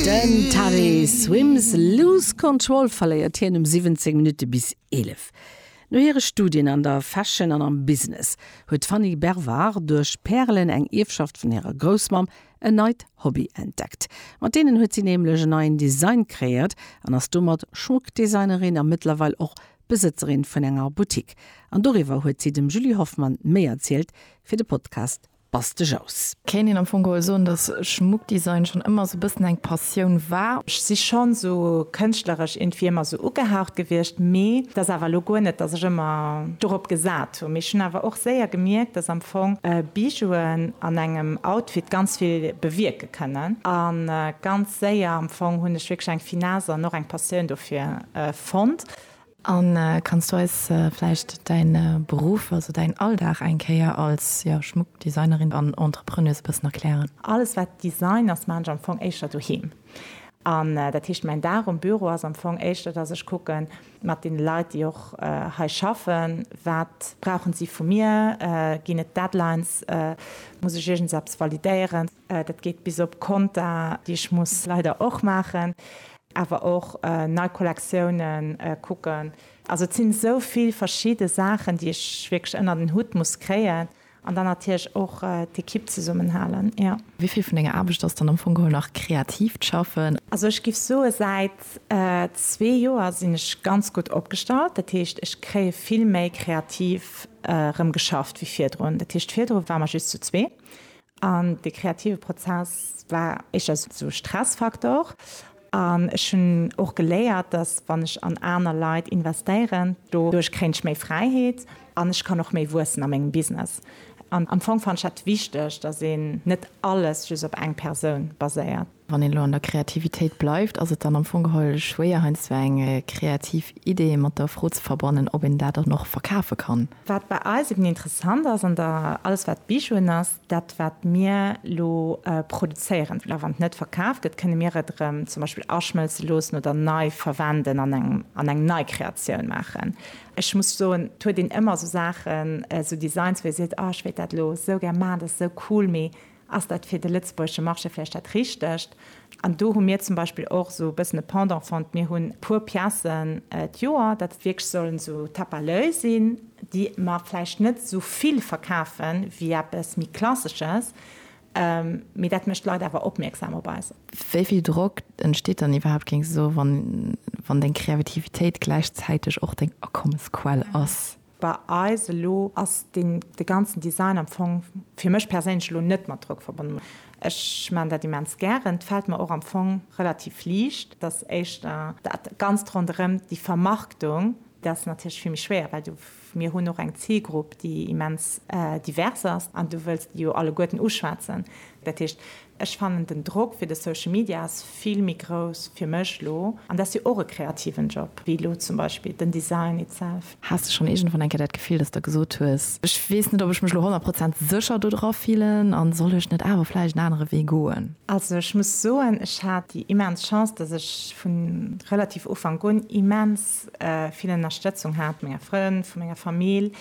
Den Tari Swims Lose Control verléiert hien um 17 Minutte bis 11. No hire Studien an der Fashion an am Business huet d'Fanny Bervard duerch Pärelen, eng Ierfschaft vun hirer Groussmamm, en neit Hobby entdeckt. Mat deenen huet si nämlech en neien Design kreéiert an ass domat Schmuckdesignerin a mëttlerweil och Besëtzerin vun enger Boutique. An doriwwer huet si dem Julie Hoffmann méi erzielt fir de Podcast. bass de Jous. Kéint een am Fong geholl soen, dass Schmuckdesign schonn ëmmer sou bëssen eng Passioun war. Ech si schonn sou kënschtleresch iergendwéi ëmmer sou ugehaucht gewiescht, mee et ass awer elo guer net, dass ech ëmmer dorop gesat hunn. Mee ech hunn awer och séier gemierkt, dass am Fong Bijouen an engem Outfit ganz vill bewierke kënnen. A ganz séier am Fong hunn ech wierklech eng Finesse an och eng Passioun dofir fonnt. An kanns du eis vläicht däin Beruff, also däin Alldag eng Kéier als Schmuckdesignerin an Entrepreneuse e bëssen erklären? Alles wat Design ass, maan ech am Fong éischter doheem. An dat heescht mäin Dag um Büro ass am Fong éischter dass ech kucken mat den Leit déi och hei schaffen, wat brauchen si vu mir, ginn et Deadlines, muss ech iergendseps validéieren, dat geet bis op Konta déi ech muss leider och maachen. awer och nei Kollektiounen kucken, also et sinn esou vill verschidde Saachen déi ech wierklech ënnert en Hutt muss kréien an dann natierlech och d'Equipe zesummen halen, jo. Wéi vill vun denger Aarbecht ass dann am Fong geholl nach kreatiivt Schaffen? Also ech giff soe säit zwee Joer sinn ech ganz gutt opgestallt, dat heescht ech kréie vill méi kreativ rëm geschafft wéi virdrun, dat heescht virdru ware mer just zu zwee An de kreative Prozess war éischter sou Stressfaktor. An ech hunn och geléiert, dass wann ech an aner Leit investéieren, doduerch kréien ech méi Fräiheet an ech kann och méi wuessen a mengem Business. An am Fong fannen ech dat wichteg, dass een net alles just op eng Persoun baséiert. Wann een elo an der Kreativitéit bleift, ass et dann am Fong geholl schwéier heiansdo eng kreativ Idee mat der Fro ze verbannen, ob een dat dann och verkafe kann. Wat bei eis eben interessant ass an der alles wat Bijouen ass, dat wat mir elo produzéieren, well a wann et net verkaf gëtt, kënne mir et erëm zum Beispill aschmëlze loossen oder nei verwenden an engem an eng nei Kreatioun maachen. Ech muss soen, et huet een ëmmer esou Saachen, esou Designs, wou ee seet, oh ech wéilt dat elo esou gär maachen, dat ass esou cool, mee Ass dat fir de lëtzebuergesche Marché vläicht dat Richtegt? An do hu mir zum Beispill och esou e bëssen e Pendant fonnt. Mir hunn e puer Piècen d'Joer, dat et wierklech sollen esou Tappaläu sinn, déi mer vläicht net esou vill verkafe wéi eppes méi Klassesches, mee dat mécht d'Leit awer opmierksam op eis. Wéi vill Drock entsteet dann iwwerhaapt, géing se soen, wann deng Kreavitivitéit gläichzäiteg och deng Akommesquell ass? Bei eis elo ass deen de ganzen Design am Fong fir mech perséinlech elo net mat Drock verbonnen. Ech maan dat immens gären. Et fällt mer och am Fong relativ liicht. Et ass éischter dat ganzt ronderëm déi Vermarktung, dat ass natierlech vill méi schwéier, well du, mir hunn och eng Zilgrupp déi immens divers ass an du wëlls déi jo alleguerten uschwätzen. Dat heescht, Ech fannen den Drock fir de Social Media ass vill méi grouss fir mech lo, an dat ass jo och e kreativen Job, wéi lo zum Beispill den Design itself. Has de schonn iergendwann eng Kéier dat Gefill, dass de gesot hues, Ech weess net, ob ech mech lo honnert Prozent sécher dodra fillen, a soll ech net awer vläicht en anere Wee goen? Also ech muss soen, ech hat déi immens Chance, dass ech vu relativ Ufank un immens vill Ënnerstëtzung hat, vu menger Frënn, vu menger Famill,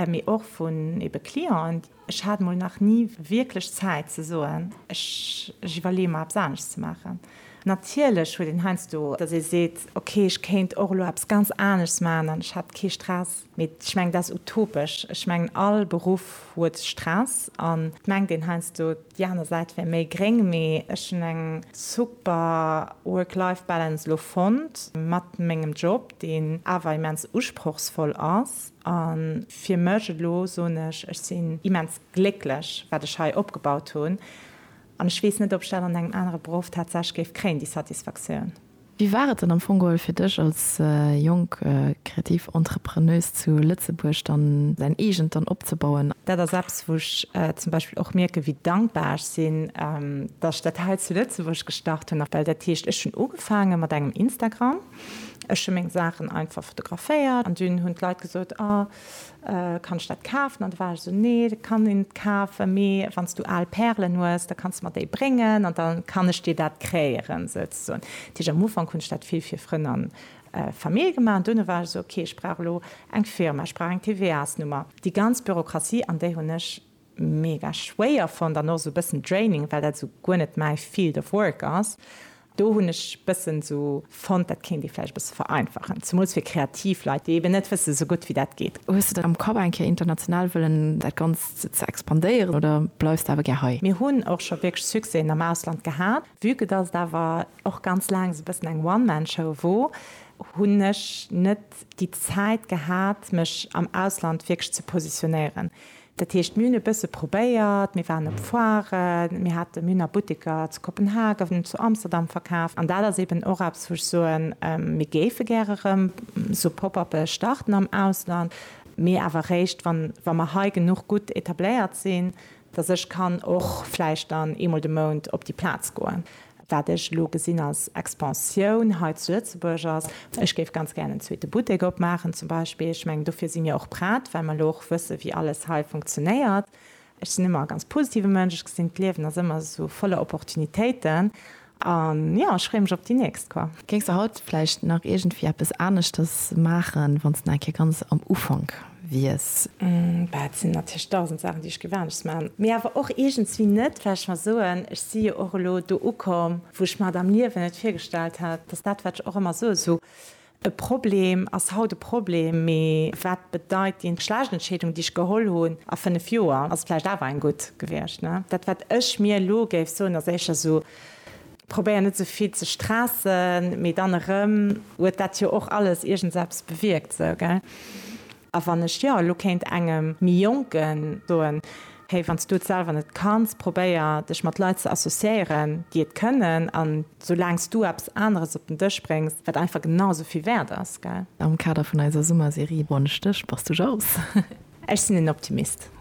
mee och vun eebe Clienten, Ech hat mol nach ni wierklech Zäit ze soen, ech iwwerleeë mer eppes anescht ze maachen. Natierlech huet een heiansdo, datt ee seet, ok, ech kéint och elo eppes ganz aneschts maachen an ech hätt kee Stress. Mee ech mengen, dat ass utopesch. Ech mengen, all Beruff huet Stress an et mengt een heiansdo, déi aner Säit wär méi gréng. Mee ech hunn eng super Work-Life-Balance elo fonnt mat mengem Job, deen awer immens usprochsvoll ass. A fir mech elo soen ech, ech sinn immens glécklech, wat ech hei opgebaut hunn. An ech weess net, ob ech dat an engem anere Beruff tatsächlech géif kréien, déi Satisfaktioun. Wéi war et dann am Fong geholl fir dech als jonk kreativ Entrepreneuse zu Lëtzebuerg dann säin eegent dann opzebauen? Dat ass eppes, wou ech zum Beispill och mierken, wéi dankbar ech sinn, datt ech dat hei zu Lëtzebuerg gestart hunn. Well dat heescht, ech hunn ugefaange mat engem Instagram. Ech hun meng Saachen einfach fotograféiert an dun hun d'Leit gesot, oh kann ech dat kaafen? An da war ech esou, nee dat kann een net kaafen, mee wanns du aal Pärelen hues da kanns de mer déi bréngen an da kann ech dir dat kréieren souzesoen. Dat heesch am Ufank hun ech dat vill fir Frënn an Famill gemaach an duerno war ech esou, ok ech brauch elo eng Firma, ech brauch eng TVAs-Nummer, déi ganz Bürokratie an déi hun ech mega schwéier fonnt an och sou bëssen draining well dat sou guer net mäi field of work ass. Do hunn ech bëssen sou fonnt dat kéint ee vläicht e bësse vereinfachen, zemools fir kreativ Leit déi eben net wësse sou gutt wéi dat geet. Hues de dat am Kapp eng Kéier international wëllen dat ganzt ze expandéieren oder bleifs de awer gär hei? Mir hunn och scho wierklech Succèsen am Ausland gehat. Vue que dass et awer och ganz laang sou bëssen eng one man show wor, hunn ech net déi Zäit gehat mech am Ausland wierklech ze positionéieren. Dat heescht, mir hunn e bësse probéiert, mir waren op Foiren, mir hate, mir hunn a Butteker zu Kopenhagen, zu Amsterdam verkaaft. An dat ass eeben och eppes, wou ech soen, mir géife gäre erëm esou Pop-uppe starten am Ausland, mee awer eréischt, wann, wa mer hei genuch gutt etabléiert sinn, dass ech kann och vläicht dann eemol de Mount op déi Plaz goen. Wat ech elo gesinn als Expansioun hei zu Lëtzebuerg ass, ech géif ganz gären en zweete Buttek opmaachen zum Beispill. Ech mengen, dofir si mir och prett, well mer elo och wëssen, wéi alles hei funktionéiert. Ech sinn ëmmer e ganz positive Mënsch, ech gesinn, d'Liewen ass ëmmer esou voller Opportunitéiten. An jo, ech freeë mech op déi nächst, quoi. Géings de haut vläicht nach iergendwéi eppes aneschters maachen, wann s de nach eng Kéier ganz am Ufank wies. Bah, et sinn natierlech dausend Saachen, déi ech géif anescht maachen, mee awer och iergendswéi net, well ech mer soen, ech si jo och elo do ukomm, wou ech mer et am Liewen net virgestallt hätt, dass dat, wat ech och ëmmer soe, sou e Problem ass haut e Problem, mee wat bedeit déi schlecht Entscheedung, déi ech geholl hunn a fënnef Joer, ass et vläicht awer eng gutt gewiescht, ne? Dat, wat ech mir elo géif soen, ass éischter sou. Probéier net sou vill ze stressen, mee dann erëm huet dat jo och alles iergendseppes bewierkt, sou, gell? A wann ech jo elo kéint engem méi Jonken soen, Hey, wann s du et selwer net kanns, probéier dech mat Leit ze associéieren, déi et kënnen, an soulaang s du eppes aneres op den Dësch bréngs, wat einfach genau sou vill wäert ass, gell? Am Kader vun eiser Summerserie Bonne Stech, bass du jaloux? Ech sinn en Optimist.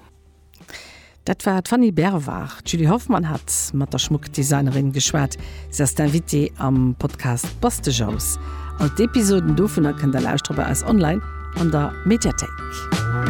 Dat war d'Fanny Berwar. D'Julie Hoffmann hat mat der Schmuckdesignerin geschwat. Si ass d'Invitée am Podcast Bass de Jous. All d'Episoden dovunner kënnt der lauschteren bei eis online an der Mediathéik.